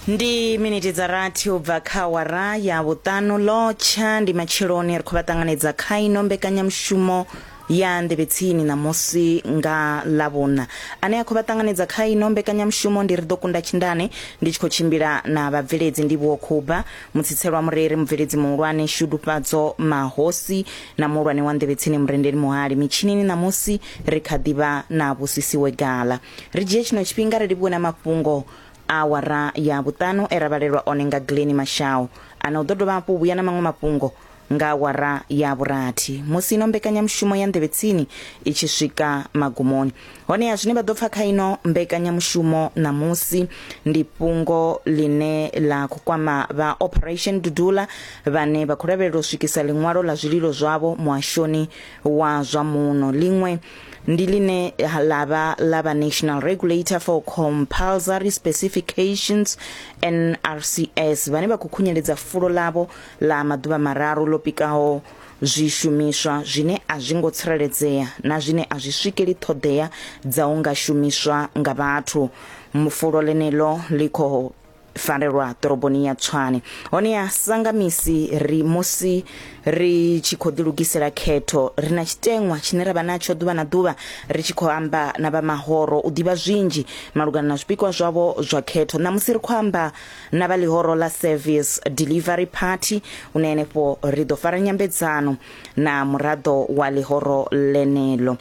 ndi miniti dza rathi u bva kha wara ya vhuṱanu lotsha ndi matsheloni ri khou vha ṱanganedza kha ino mbekanyamushumo ya nḓevhetsini ṋamusi nga ḽavhuna ane a khou vha ṱanganedza kha ino mbekanyamushumo ndi ri ḓo kunda tshindane ndi tshi khou tshimbila na vhabveledzi ndi vhuo khuba mutsitselwa mureri mubveledzi muhulwane shudufhadzo mahosi na muhulwane wa nḓevhetsini murendeli muhali mitshinini ṋamusi ri kha ḓivha na vhusisiwe gala ri dzhie tshino tshifhinga ri livhuwe na mafhungo a awara ya vhuṱanu e ra vhalelwa one nga gileni mashau ana u ḓo dovha hafhu vhuya na maṅwe mafhungo nga awara ya vhurathi musi ino mbekanyamushumo ya nḓevhe tsini i tshi swika magumoni honeha zwine vha ḓo pfa kha ino mbekanyamushumo ṋamusi ndi fhungo ḽine ḽa khou kwama vha operation dudula vhane vha khou lavhelela u swikisa ḽiṅwalo ḽa zwililo zwavho muhashoni wa zwa muno ḽiṅwe ndi line la vha la vha national regulator for compulsory specifications nrcs vhane vha khou khunyeledza fulo ḽavho ḽa maḓuvha mararu ḽo pikaho zwishumiswa zwine a zwi ngo tsireledzea na zwine a zwi swikeli ṱhoḓea dza u nga shumiswa nga vhathu mufulo ḽeneḽo ḽi khou farelwa ḓoroboni ya Tshwane. Honeha sanga misi ri musi ri tshi khou ḓilugisela khetho, ri na tshiteṅwa tshine ra vha natsho ḓuvha na ḓuvha ri tshi khou amba na vha mahoro u ḓivha zwinzhi malugana na zwipikwa zwavho zwa khetho. Ṋamusi ri khou amba na vha ḽihoro ḽa Service Delivery Party hune henefho ri ḓo fara nyambedzano na muraḓo wa ḽihoro ḽeneḽo.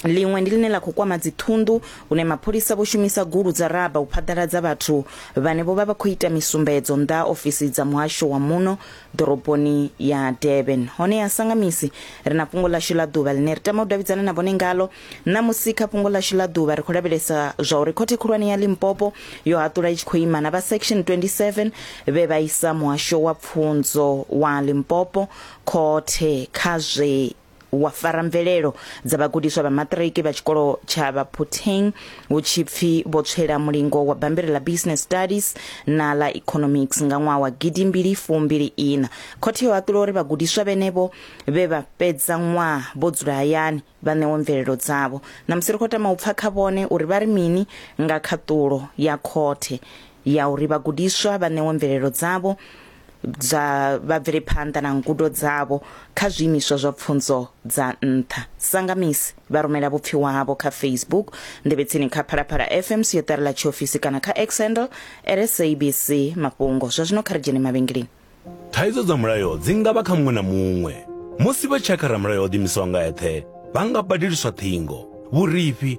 Ḽiṅwe ndi ḽine ḽa khou kwama dziṱhunḓu hune mapholisa vho shumisa gulu dza raba u phaḓaladza vhathu vhane vho vha vha khou ita misumbedzo nnḓa ha ofisi dza muhasho wa muno ḓoroboni ya Durban. Hone ya sangamisi ri na fhungo ḽashu ḽa ḓuvha ḽine ri tama u davhidzana na vhone ngalo. Ṋamusi kha fhungo ḽashu ḽa ḓuvha ri khou lavhelesa zwa uri khothe khulwane ya Limpopo yo haṱula i tshi khou ima na vha section 27 vhe vha isa muhasho wa pfunzo wa Limpopo khothe kha zwe wa fara mvelelo dza vhagudiswa vha maṱiriki vha tshikolo tsha Baphutheng hu tshi pfi vho tswela mulingo wa bammbiri ḽa Business Studies na ḽa Economics nga ṅwaha wa gidi mbili fumbili ina. Khothe yo haṱula uri vhagudiswa vhenevho vhe vha fhedza ṅwaha vho dzula hayani vha ṋewe mvelelo dzavho. Ṋamusi ri khou tama u pfa kha vhone uri vha ri mini nga khaṱulo ya khothe ya uri vhagudiswa vha ṋewe mvelelo dzavho dza vha bvele phanḓa na ngudo dzavho kha zwiimiswa zwa pfunzo dza nṱha sanga misi vha rumela vhupfiwa havho kha facebook nḓevhetsini kha phalaphala fm siotari ḽa tshiofisi kana kha xhandle rsabc mafhungo zwa zwino kha ri dzhene mavhengeleni thaidzo dza mulayo dzi nga vha kha muṅwe na muṅwe musi vha tshakha ramulayo o ḓimisaho nga eṱhe vha nga badeliswa ṱhingo vhurifhi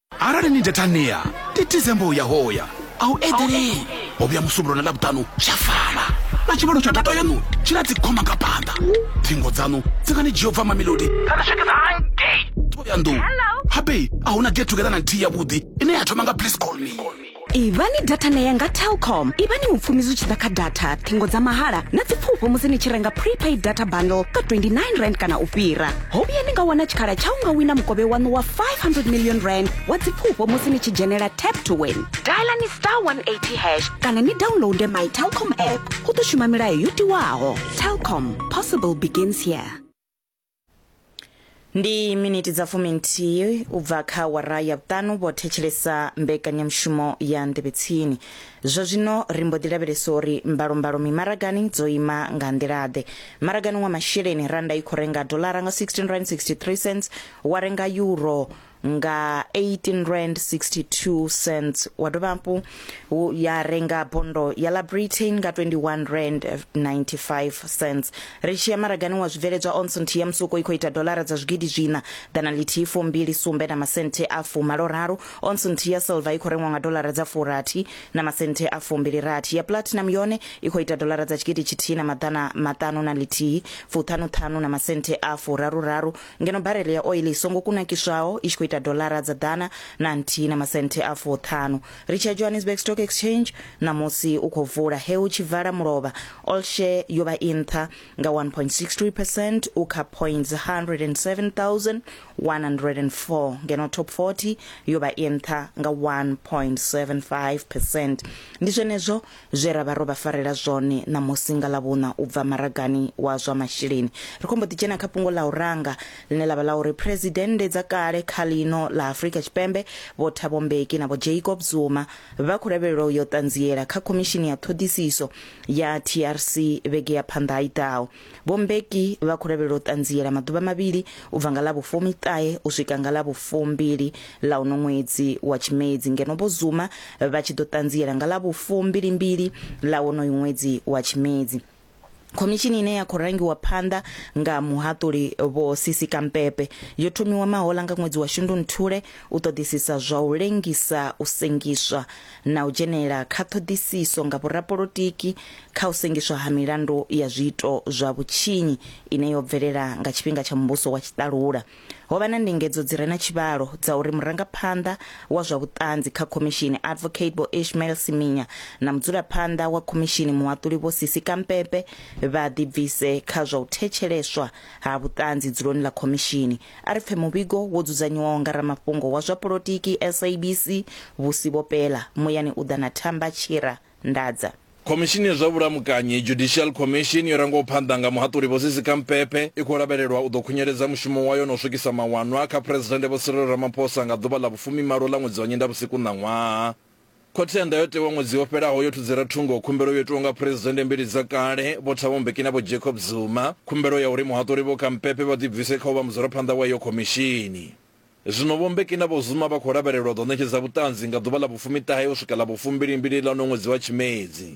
arali ni data nia titize mbo ya hoya a u eḓelei ho vhuya musumbuluwo na ḽavhuṱanu zwa fana na tshivhalo tsha data yaṋu tshi na dzikhoma nga phanḓa thingo dzaṋu dzi nga ni dzhia u bva mamelodi kana swikisa hangei thohoyandou habe a hu na get together na nthihi yavhuḓi ine ya thoma nga please call me ivhani data na yanga telkom ivhani mupfumi zwi tshi ḓa kha data thingo dza mahala na dzipfufho musi ni tshi renga prepaid data bundle ka 29 rand kana u fhira ho vhuya ni nga wana tshikhala tsha u nga wina mukovhe waṋu wa 500 million rand wa dzipfufho musi ni tshi dzhenela tap to win dialani star 180 hash kana ni downloade my telkom app hu ḓo shuma milayo yo tiwaho telkom possible begins here ndi miniti dza fumi nthihi u bva kha wara ya vhuṱanu vho thetshelesa mbekanyamushumo ya nḓevhetsini zwa zwino ri mbo ḓi lavhelesa uri mbalombalo mimaragani dzo ima nga nḓila-ḓe maragani wa masheleni randa i khou renga dolara nga 16 rand 63 cents wa renga euro nga 18 rand 62 cents wa dovha hafhu hu- ya renga bondo ya la britain nga 21 rand 95 cents ri tshi ya maragani wa zwibveledzwa onsont ya musuko i khou ita dolara dza zwigidi zwina ḓana lithihi fumbili sumbe na masenthe a fumalo raru onsont ya silver i khou rengwa nga dolara dza furathi na masenthe a fumbili rathi ya platinum yone i khou ita dolara dza tshigidi tshithihi na maḓana maṱanu na lithihi fuṱhanuṱhanu na masenthe a furaru raru ngeno barele ya oiḽi i songo kunakiswaho i tshi khou ita doḽara dza ḓana na nthihi na masenthe a fuṱhanu ri tshi ya johannesburg stock exchange ṋamusi u khou vula he u tshi vala mulovha all share yo vha i nṱha nga 1.63 percent u kha points 107104 ngeno top 40 yo vha i nṱha nga 1.75 percent ndi zwenezwo zwe ra vha ro vha farela zwone ṋamusi nga Ḽavhuṋa u bva maragani wa zwa masheleni. Ri khou mbo ḓi dzhena kha fhungo ḽa u ranga, ḽine ḽa vha ḽa uri Phresidennde dza kale kha ḽino ḽa Afrika Tshipembe Vho Thabo Mbeki na Vho Jacob Zuma vha khou lavhelelwa u yo ṱanziela kha Khomishini ya Ṱhoḓisiso ya TRC vhege ya phanḓa i ḓaho. vho mbeki vha khou lavhelela u ṱanziela maḓuvha mavhili u bva nga ḽa vhufumi ṱahe u swika nga ḽa vhufumbili ḽa uno ṅwedzi wa tshimedzi ngeno vho zuma vha tshi ḓo ṱanziela nga ḽa vhufumbilimbili ḽa wonoyu ṅwedzi wa tshimedzi khomishini ine ya khou rangiwa phanḓa nga muhaṱuli vho sisi kampepe yo thomiwa mahola nga ṅwedzi wa shundunthule u ṱoḓisisa zwa u lengisa u sengiswa na u dzhenela kha ṱhoḓisiso nga vhorapolotiki kha u sengiswa ha milandu ya zwiito zwa vhutshinyi ine yo bvelela nga tshifhinga tsha muvhuso wa tshiṱalula. Ho vha na ndingedzo dzi re na tshivhalo dza uri murangaphanḓa wa zwa vhuṱanzi kha khomishini Advocate Vho Ishmael Siminya na mudzulaphanḓa wa khomishini muhaṱuli Vho Sisi Kampepe vha ḓibvise kha zwa u thetsheleswa ha vhuṱanzi dzuloni ḽa khomishini. A ri pfe muvhigo wo dzudzanyiwaho nga ramafhungo wa zwa polotiki SABC vhusi vho pela, muyani u ḓa na thamba tshira ndadza. Khomishini ya zwa Vhulamukanyi, Judicial Commission, yo rangwaho phanḓa nga Muhaṱuli Vho Sisi Kampepe, i khou lavhelelwa u ḓo khunyeledza mushumo wayo na u swikisa mawanwa kha Phresidennde Vho Cyril Ramaphosa nga ḓuvha ḽa vhufumimalo ḽa ṅwedzi wa Nyendavhusiku ṋaṅwaha. Khothe ya Ndayotewa ṅwedzi wo fhelaho yo thudzela thungo khumbelo yo itwaho nga Phresidennde mbili dza kale Vho Thabo Mbeki na Vho Jacob Zuma, khumbelo ya uri muhaṱuli Vho Kampepe vha ḓibvise kha u vha mudzulaphanḓa wa iyo khomishini. Zwino Vho Mbeki na Vho Zuma vha khou lavhelelwa u ḓo ṋetshedza vhuṱanzi nga ḓuvha ḽa vhufumi-ṱahe u swika ḽa vhufumbilimbili ḽa uno ṅwedzi wa Tshimedzi.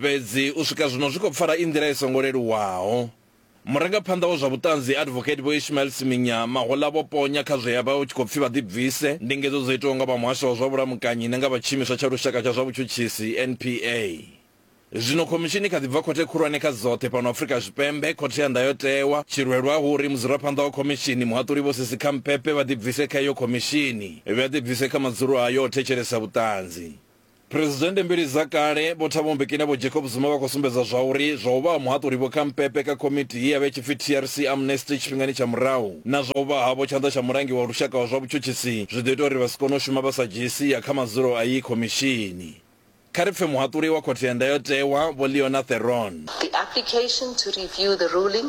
Fhedzi u swika zwino zwi khou pfala i nḓila i songo leluwaho. Murangaphanḓa wa zwa vhuṱanzi Advocate Vho Ishmael Siminya mahoḽa vho ponya kha zwe ya vha hu tshi khou pfi vha ḓibvise ndingedzo dzo itwaho nga vha Muhasho wa zwa Vhulamukanyi na nga vha Tshiimiswa tsha Lushaka tsha zwa Vhutshutshisi, NPA. Zwino khomishini i kha ḓi bva khothe khulwane kha dzoṱhe fhano Afrika Tshipembe, Khothe ya Ndayotewa. Tshilwelwa hu uri mudzulaphanḓa wa khomishini, Muhaṱuli Vho Sisi Khampepe vha ḓibvise kha iyo khomishini, vha ḓibvise kha madzulo ayo o thetshelesa vhuṱanzi. Phresidennde mbili dza kale Vho Thabo Mbeki na Vho Jacob Zuma vha khou sumbedza zwauri zwa u vha ha muhaṱuli Vho Khampepe kha komiti ye ya vha i tshi pfi TRC Amnesty tshifhingani tsha murahu na zwa u vha havho tshanḓa tsha mulangi wa lushaka wa zwa vhutshutshisi zwi ḓo ita uri vha si kone u shuma vha sa dzhii sia kha madzulo a iyi khomishini. Kha ri pfe muhaṱuli wa Khothe ya Ndayotewa Vho Leona Theron. The application to review the ruling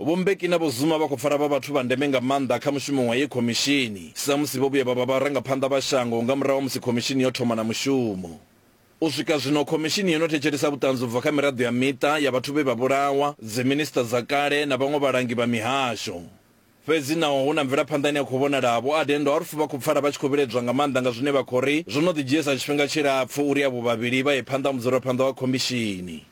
Vho Mbeki na Vho Zuma vha khou pfala vha vhathu vha ndeme nga maanḓa kha mushumo wa iyi khomishini samusi vho vhuya vha vha vharangaphanḓa vha shango nga murahu ha musi khomishini yo thoma na mushumo. U swika zwino, khomishini yo no thetshelesa vhuṱanzi u bva kha miraḓo ya miṱa ya vhathu vhe vha vhulawa, dziminisiṱa dza kale na vhaṅwe vhalangi vha mihasho. Fhedzi naho hu na mvelaphanḓa ine ya khou vhonala, Vho Adendorf vha khou pfala vha tshi khou vhiledzwa nga maanḓa nga zwine vha khou ri zwo no ḓi dzhiesa tshifhinga tshilapfu uri avho vhavhili vha ye phanḓa ha mudzulaphanḓa wa khomishini.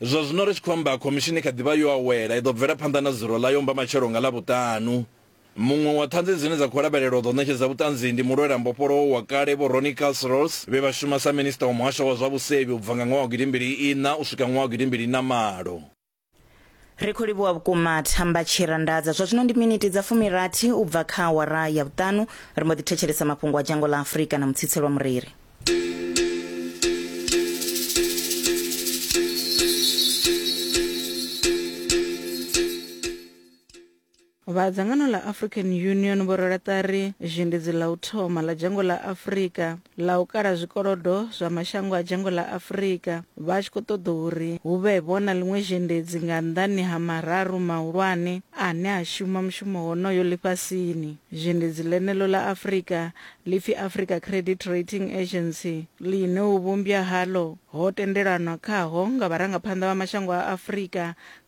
Zwa zwino ri tshi khou amba, khomishini i kha ḓi vha yo awela. I ḓo bvela phanḓa na dzulo ḽayo mbamatshelo nga Ḽavhuṱanu. Muṅwe wa ṱhanzi dzine dza khou lavhelelwa u ḓo ṋetshedza vhuṱanzi ndi mulwela mbofholowo wa kale Vho Ronnie Kasrils vhe vha shuma sa Minisita wa Muhasho wa zwa Vhusevhi u bva nga ṅwaha wa gidi mbili iṋa u swika ṅwaha wa gidi mbili na malo. Ri khou livhuwa vhukuma Thamba Tshirandaza. Zwa zwino ndi miniti dza fumirathi u bva kha awara ya vhuṱanu. Ri mbo ḓi thetshelesa mafhungo a dzhango ḽa Afrika na Mutsitselwa Mureri. vha dzangano ḽa african union vho rwela ṱari zhendedzi ḽa u thoma ḽa dzhango ḽa afurika ḽa u kala zwikolodo zwa mashango a dzhango ḽa afurika vha tshi khou ṱoḓa uri hu vhe vho na ḽiṅwe zhendedzi nga nnḓani ha mararu mahulwane ane a shuma mushumo honoyo ḽifhasini zhendedzi ḽeneḽo ḽa afurika Ḽipfi Africa Credit Rating Agency, ḽine u vhumbya haḽo ho tendelanwa khaho nga vharangaphanḓa vha mashango a Afrika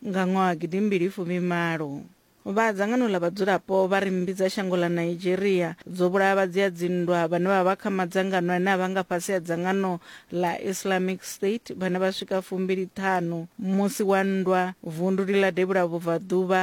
nga ṅwaha gidi mbili fumi malo. Vha dzangano ḽa vhadzulapo vha ri mmbi dza shango ḽa Nigeria dzo vhulaya vhadzia-dzinndwa vhane vha vha kha madzangano ane a vha nga fhasi ha dzangano ḽa Islamic State vhane vha swika fumbili ṱhanu musi wa nndwa vunduni ḽa Devhula Vhubvaḓuvha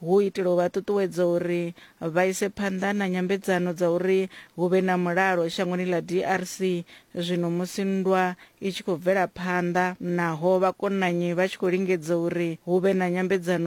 hu u itela u vha ṱuṱuwedza uri vha ise phanḓa na nyambedzano dza uri hu vhe na mulalo shangoni ḽa DRC zwino musi nndwa i tshi khou bvela phanḓa naho vhakonanyi vha tshi khou lingedza uri hu vhe na nyambedzano